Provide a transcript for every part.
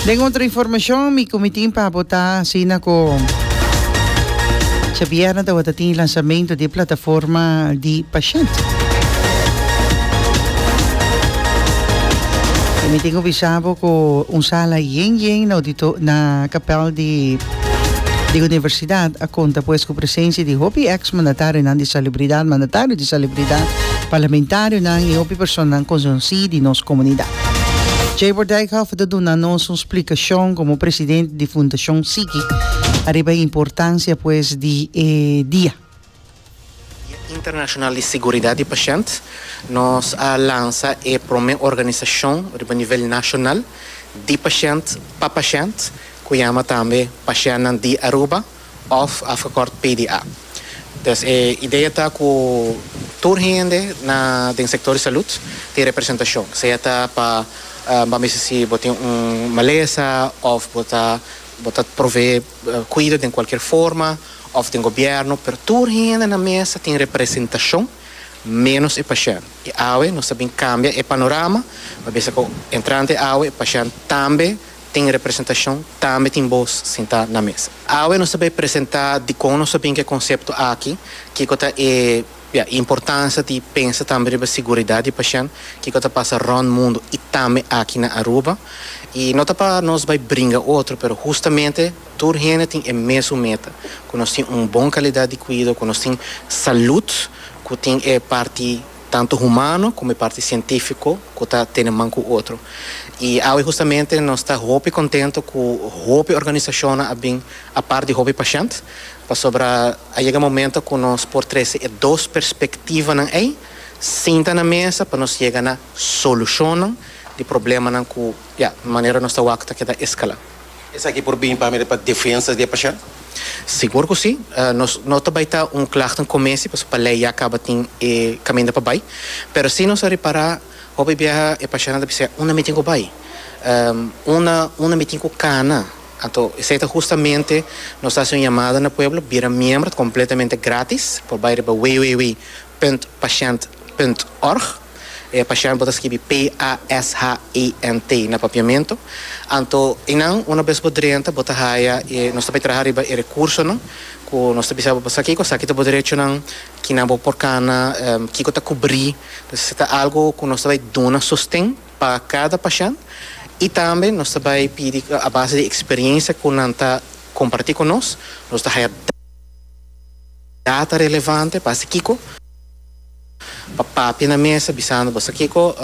Den otro informacion mi cu mi tin pa bota asina cu djabierna tabata tin lansamento di e plataforma di pashent. Y mi tin cu bisa bo cu un sala yen yen na auditor na kapel di di universidad a conta pues cu Presensia di hopi eks mandatarionan di salibridat, mandatario di salibridat, parlamentarionan i hopi personanan konsonsí di nos komunidat. Jayber Dijkhoff ta duna nos un splikashon komo presidente di Fundashon Siki ariba e importansia pues di e dia. Dia Internashonal di Siguridat di Pashènt, nos a lansa e promé organisashon riba nivel nashonal di pashènt pa pashènt ku yama tambe Pashènnan di Aruba. òf afgekort PDA. Pues e idea ta ku tur hende na den sektor di salud tin representashon, sea ta pa bo a mester si bo tin un malesa òf bo ta bo ta proveé kuido den kualkier forma òf den gobièrnu, pero tur hende na mesa tin representashon ménos e pashènt. I awe nos ta bin kambia e panorama, pa bisa ku entrante awe e pashènt tambe. tin representashon, tambe tin bos sintá na mesa. Awe nos ta bai presentá dikon nos a bin ku e konsepto aki, kiko ta e importansia di pensa tambe riba siguridat di pashènt, kiko ta pasa rònt mundu i tambe aki na Aruba. I no ta pa nos bai bringa otro, pero hustamente tur hende tin e mesun meta, ku nos tin un bon kalidat di kuido, ku nos tin salùt ku tin e parti tantu humano como e parti cientifico cu ta tene man cu otro. Y awe justamente nos ta hopi contento cu hopi organisacionnan a bin apart di hopi pashent pasobra a yega momento cu nos por trece e dos perspectivanan ey sinta na mesa pa nos yega na solucionnan di problemanan cu ya manera nos ta wak ta keda escala. Esaki por bini pa mira pa defensa di e pashent? Sigur ku si. Nos no ta bai ta un klagte un kumesi pasobra pa lei ya kaba tin e kaminda pa bai. Pero si nos a repará hopi biaha e pashentnan ta bisa, Unda mi tin ku bai? Unda unda mi tin ku kana? Anto esei ta hustamente nos ta hasi un yamada na pueblo, bira miembro, ta kompletamente grátis, por bai riba www. Punt Pashent Punt Org. E pashent bo ta skibi p-a-s-h-e-n-t na papiamentu. Anto eynan, una bes bo drenta, bo ta haya e, nos ta bay traha riba e recursonan cu nos ta bisa bo pa sa kico, sa kita bo derechonan, kinan bo por cana, kico ta cubri. Entonces si ta algo cu nos ta bay duna sosten pa cada pashent y tambe nos ta bay pidi a base di experiencia cu nan ta comparti cu nos, nos ta haya. Ya ta relevante pa hasi kiko? Pa papia na mesa bisando bo, sa kiko?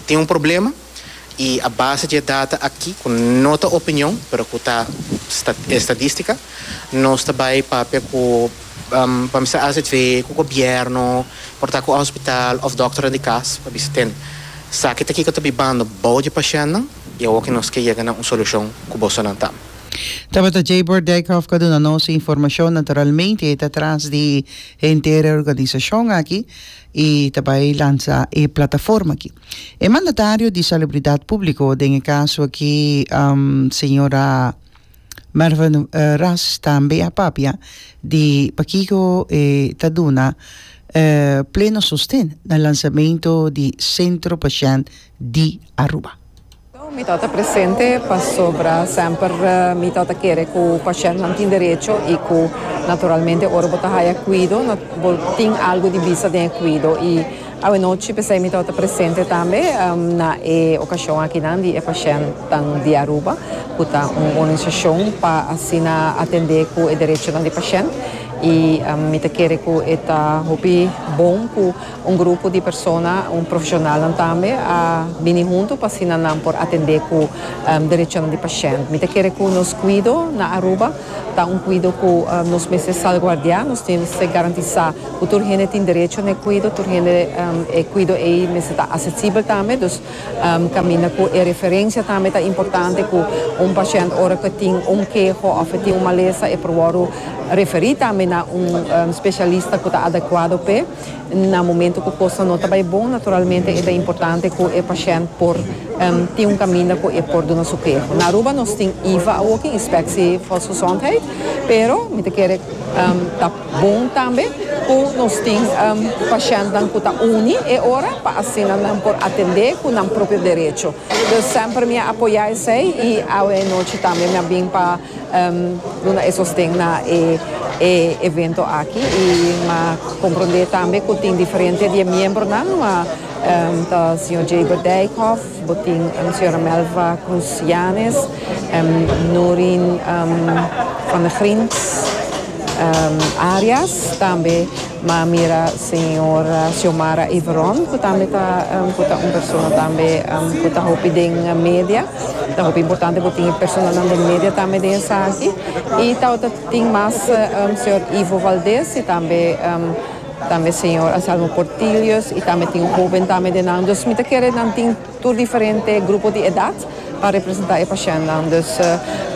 Tin un problema i a base dje data aki ku no ta opinion pero ku ta estadistika nos ta bai papia ku pa bisa azv ku gobièrnu, porta ku hospital òf dòkternan di kas pa bisa ten sa ki ta kiko ta bibando bou dje pashennan i awo ki nos ke yega na un solushon ku bosonan ta. Tabata Jayburg Dijkhoff ku a duna nos e informashon, naturalmente e ta tras di henter e organisashon aki i ta bai lansa e plataforma aki. E mandatario di Salubridat Públiko, den e kaso aki señora Mervyn Ras tambe a papia di pakiko e ta duna e pleno sosten na lansamento di Centro Pashènt di Aruba. Mi ta ta presente pasobra semper mi ta ta kere ku pashèntnan tin derecho i ku naturalmente ora bo ta haya kuido bo tin algu di bisa den e kuido. I awenochi p'esei mi ta ta presente tambe na e okashon akinan di e pashèntnan di Aruba ku ta un organisashon pa asina atendé ku e derechonan di pashènt i mi ta kere ku e ta hopi bon ku Un grupo di persona, un profesionalnan tambe a bini huntu pa asina nan por atende cu derechonan di pashent. Mi ta kere cu nos cuido na Aruba ta un cuido cu nos mester salguardia, nos mester garantisa cu tur hende tin derecho na e cuido, tur hende e cuido ei mester ta asesibel tambe. Dus caminda cu e referencia tambe ta importante cu un pashent ora cu e tin un keho of e tin un malesa e por wordo referi tambe na un specialista cu ta adecuado p'e. Na momento cu cosnan no ta bay bon, naturalmente e ta importante cu e pashent por tin un caminda cu e por duna su keho. Na Aruba nos tin iva awoki, Inspectie Volksgezondheid, pero mi ta kere ta bon tambe cu nos tin pashentnan cu ta uni e ora pa asina nan por atende cu nan propio derecho. Semper mi a apoya esey y awe nochi tambe mi a bin pa. Duna e sosten na e evento aki y ma compronde tambe cu tin diferente di e miembronan, ma ta Señor Jaber Dijkhoff, bo tin Señora Melva Cruz Yanes, Noreen van der Grins Arias, tambe. M'a mira señora Xiomara Yvron cu tambe ta cu ta un persona tambe cu ta hopi den media. Ta hopi importante cu tin e personanan den media tambe den esaki. Y tawater tin mas señor Ivo Valdez y tambe tambe señor Anselmo Portillos y tambe tin hoben tambe den nan. Dus mi ta kere nan tin. Tur diferente grupo di edat pa representa e pashennan. Dus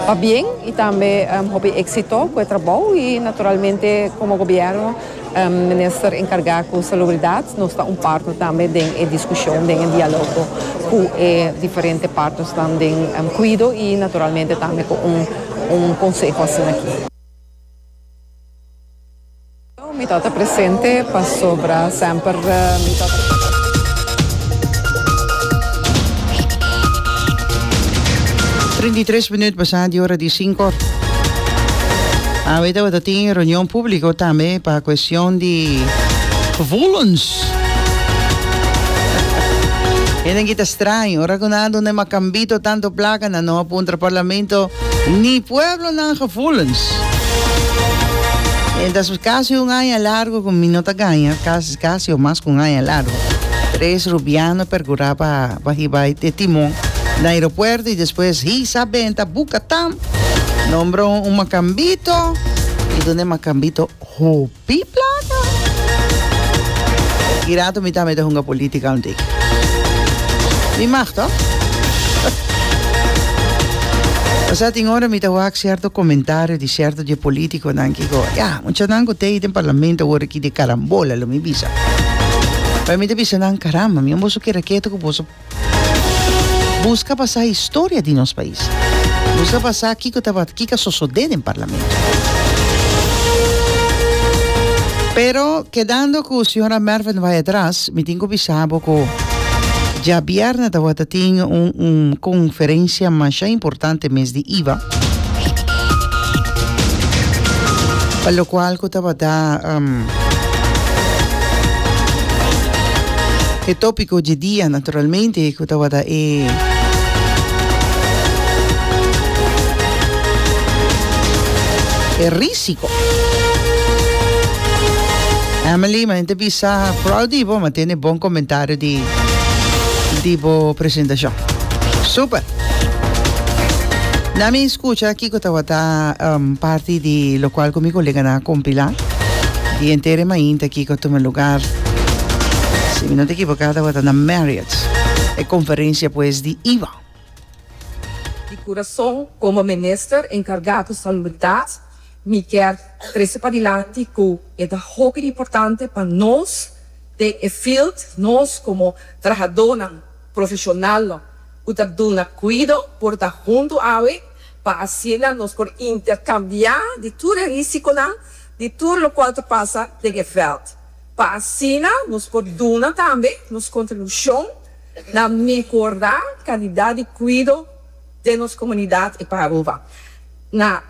pabien y tambe hopi exito cu e trabou y naturalmente como gobierno Minister encarga cu Salubridad nos ta un partner tambe den e discusion, den e dialogo cu e diferente partnersnan den cuido y naturalmente tambe cu un conseho asinaki. Mi ta ta presente pasobra semper mi ta ta. Trenta i tres minuut basá di ora di sinko. Awe tabata tin reunion públiko tambe pa kuestion di vulens. Hende kita straño, ora ku nan a duna e makambito tanto plaka nan no a puntra parlamento. Ni pueblonan gevoelens. Mientras mi casi un aña largo cu mi no ta gaña, casi, casi o mas cu un aña largo, tres Rubiano percura pa pa hiba e timon na aeropuerto y despues hisa benta buca tam, nombra un macambito y dun'e macambito hoop. Di plaka! E rato mi tambe ta hunga politica un tiki. Mi mag to? Osea tin ora mi ta wak cierto comentario di cierto dje politiconan ki go, ya, muchanan cu ta ey den parlamento a wor aki de carambola, lo mi bisa. Pero mi ta bisa nan, caramba, mi a boso keda keto cu boso Buska pa sa historia di nos pais. Buska pa sa kiko tabata, kiko a sosode den parlamento. Pero kedando ku señora Merven bai atras, mi tin ku bisa bo ku diabièrnè tabata tin un un konferensia masha importante mes di iba pa lokual ku tabata E tópiko dje dia naturalmente ku tabata e risiko. Ame Lima e ta bisa prou di bo ma tene bon komentario di di bo presentashon. Super. Na mi skucha kiko tabata parti di lokual ku mi koleganan a kompilá. Di entere mainta kiko a tuma lugar. Si mi no ta ekivoká tabata na Marriott e konferensia pues di iba. Di kurason komo minister enkargá ku salubridat mi kier trese pa dilanti ku e ta hopi importante pa nos den e field, nos komo trahadónan profeshonalnan ku ta duna kuido por ta huntu awe. Pa asina nos por interkambiá di tur e risikonan di tur lokual ta pasa den e vèlt. Pa asina nos por duna tambe nos kontribushon na mehorá kalidat di kuido den nos komunidat i pa Aruba. Na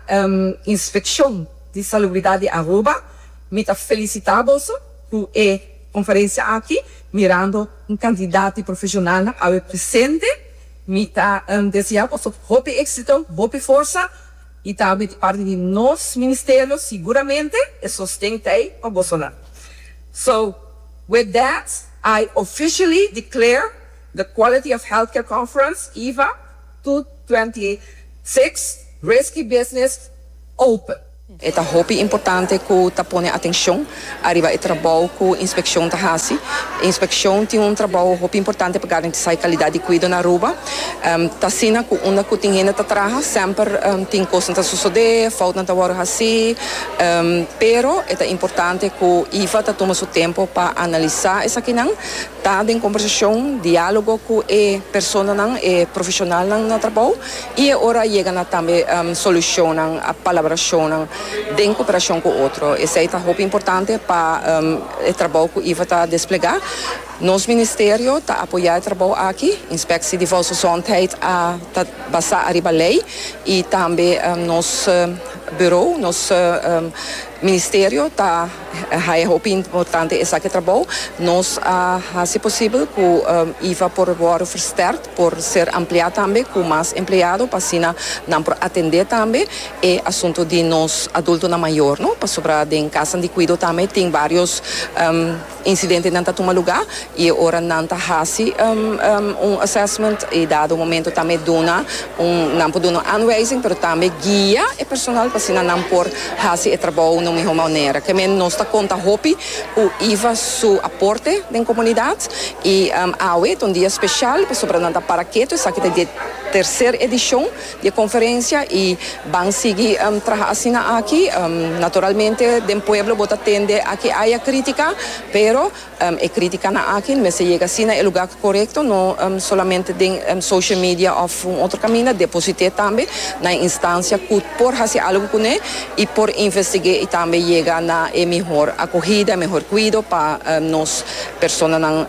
Inspekshon di Salubridat di Aruba mi ta felisitá boso ku e konferensia aki mirando un kantidat di profeshonalnan awe presente. Mi ta deseá boso hopi éksito, hopi forsa i tambe di parti di nos ministerio siguramente e sosten ta ei pa boso nan. So, with that I officially declare the Quality of Healthcare Conference, EHVA, two twenty six Risky Business open. E ta hopi importante ku ta pone atenshon ariba e trabou ku inspekshon ta hasi. Inspekshon tin un trabou hopi importante pa garantisá e kalidat di kuido na Aruba. Ta asina ku unda ku tin hende ta traha semper tin kosnan ta sosodé, foutnan ta wòrdu hasí. Pero e ta importante ku ifa ta tuma su tempu pa analisá esakinan. Ta den kombersashon, diálogo ku e personanan, e profeshonalnan na trabou i e ora a yega na tambe solushonnan, palabrashonnan den koperashon ku otro. Esei ta hopi importante pa e trabou ku Iva ta desplegá. Nos ministerio ta apoyá e trabou aki. Inspeksie di Volksgezondheid a ta basá ariba lei i tambe nos burou, nos ministerio ta. Hay a hopi importante esaki trabou. Nos a hasi posibel cu iva por wordo versterkt, por ser ampliá tambe cu mas empleado pa asina nan por atende tambe e asunto di nos adultonan mayor, no? Pasobra den casanan di cuido tambe tin varios incidentenan ta tuma lugá. Y ora nan ta haci un assessment y dado un momento tambe duna un, nan por duna un aanwijzing pero tambe guia e personal pa asina nan por haci e trabao na un miho manera. Kemey nos ta conta hopi cu Iva su aporte den comunidad y awe ta un dia special pasobra nan ta para ketu, esaki ta di e tercer edicion di e conferencia y ban sigui traha asina aki. Naturalmente den pueblo bo ta tende aki aya critica pero E críticanan aki no mester yega asina e lugar corecto, no solamente den social media of un otro caminda, deposite tambe na e instancia cu por haci algo cune y por investig'e y tambe yega na e mihor acogida, e mihor cuido pa nos personanan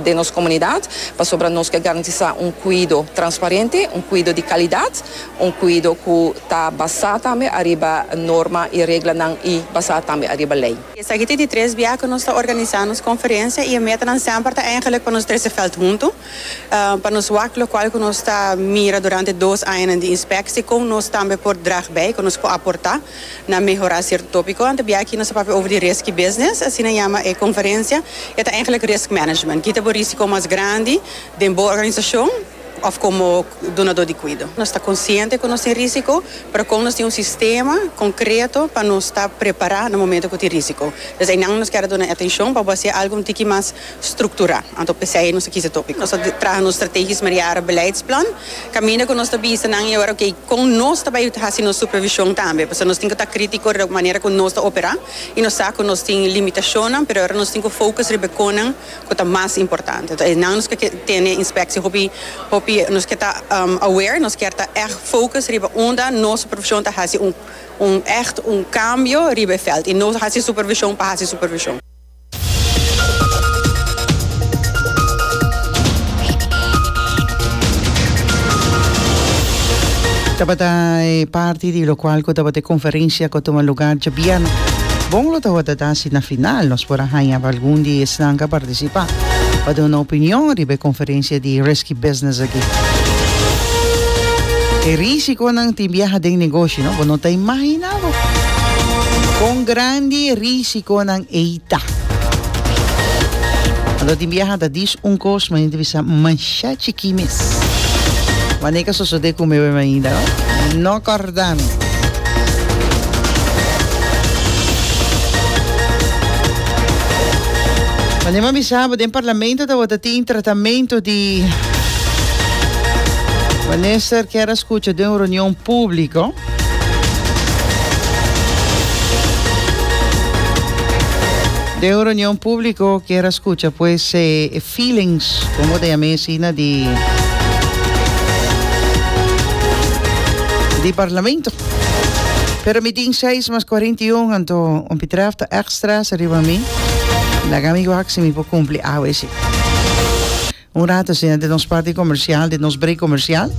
den nos comunidad, pasobra nos ke garantisa un cuido transparente, un cuido di calidad, un cuido cu ta basa tambe ariba norma y reglanan y basa tambe ariba ley. Esaki ta di tres bia ku nos ta organisá nos konferensia i e metanan semper ta eingelik pa nos trese vèlt huntu, pa nos wak lokual ku nos ta mira durante dos añanan di inspeksie kon nos tambe por drag bei, kon nos por aportá na mehorá sierto tópiko. Anto bia aki nos a papia over di riski business, asina yama e konferensia, e ta eingelik risk management. Kita bo risiko mas grandi den bo organisashon. òf komo dunadó di kuido. Nos ta konsiente ku nos tin rísiko, pero kon nos tin un sistema konkreto pa nos ta prepará na momentu ku tin rísiko? Des einan nos kèra duna e atenshon pa bo hasié algu un tiki mas strukturá. Anto p'esei nos a kisa e tópiko. Nos a traha nos strategies Mariara beleidsplan kaminda ku nos ta bisa nan i ora, ok, kon nos ta bai hasi nos supervishon tambe? Pasobra nos tin ku ta krítiko riba manera ku nos ta operá i nos sa ku nos tin limitashonnan, pero e ora nos tin ku fokus riba e konan. cu ta mas importante. Enton e nan nos ke tene inspectie hopi hopi nos ke ta aware, nos kier ta echt focus riba unda nos supervision ta haci un un echt un cambio riba e veld y no haci supervision pa haci supervision. Tabata e parti di locual cu tabata e conferencia cu a tuma lugar djabier. Bon lo ta wordada. Si na final nos por a haña pa algun di esnan ka partisipá pa duna opinion riba e konferensia di Risky Business aki. E risikonan tin biaha den negoshi, no? Bo no ta imaginá bo kon grandi e risikonan ei ta. Anto tin biaha ta dis un kos, mañana ta bisa mashá chikí mes. Wanneer ka sosodé ku mi? Bo a imaginá, no? Jordán. Manera mishabo den parlamento tabata tin tratamento di minister que era escucha de un reunión público. De un reunión público que era escucha pues eh, Feelings, con bo ta yama e asina di di Parlamento. Pero mi tin seis mas cuarenta y un anto un pitraf ta echt stress riba mi. Laga mi wak si mi por cumpli awe esi. Un rato asina den nos parti comercial, den nos break comercial,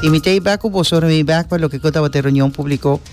y mi ta e bek cu boso ora mi bek pa loke cu tabata e reunion publico.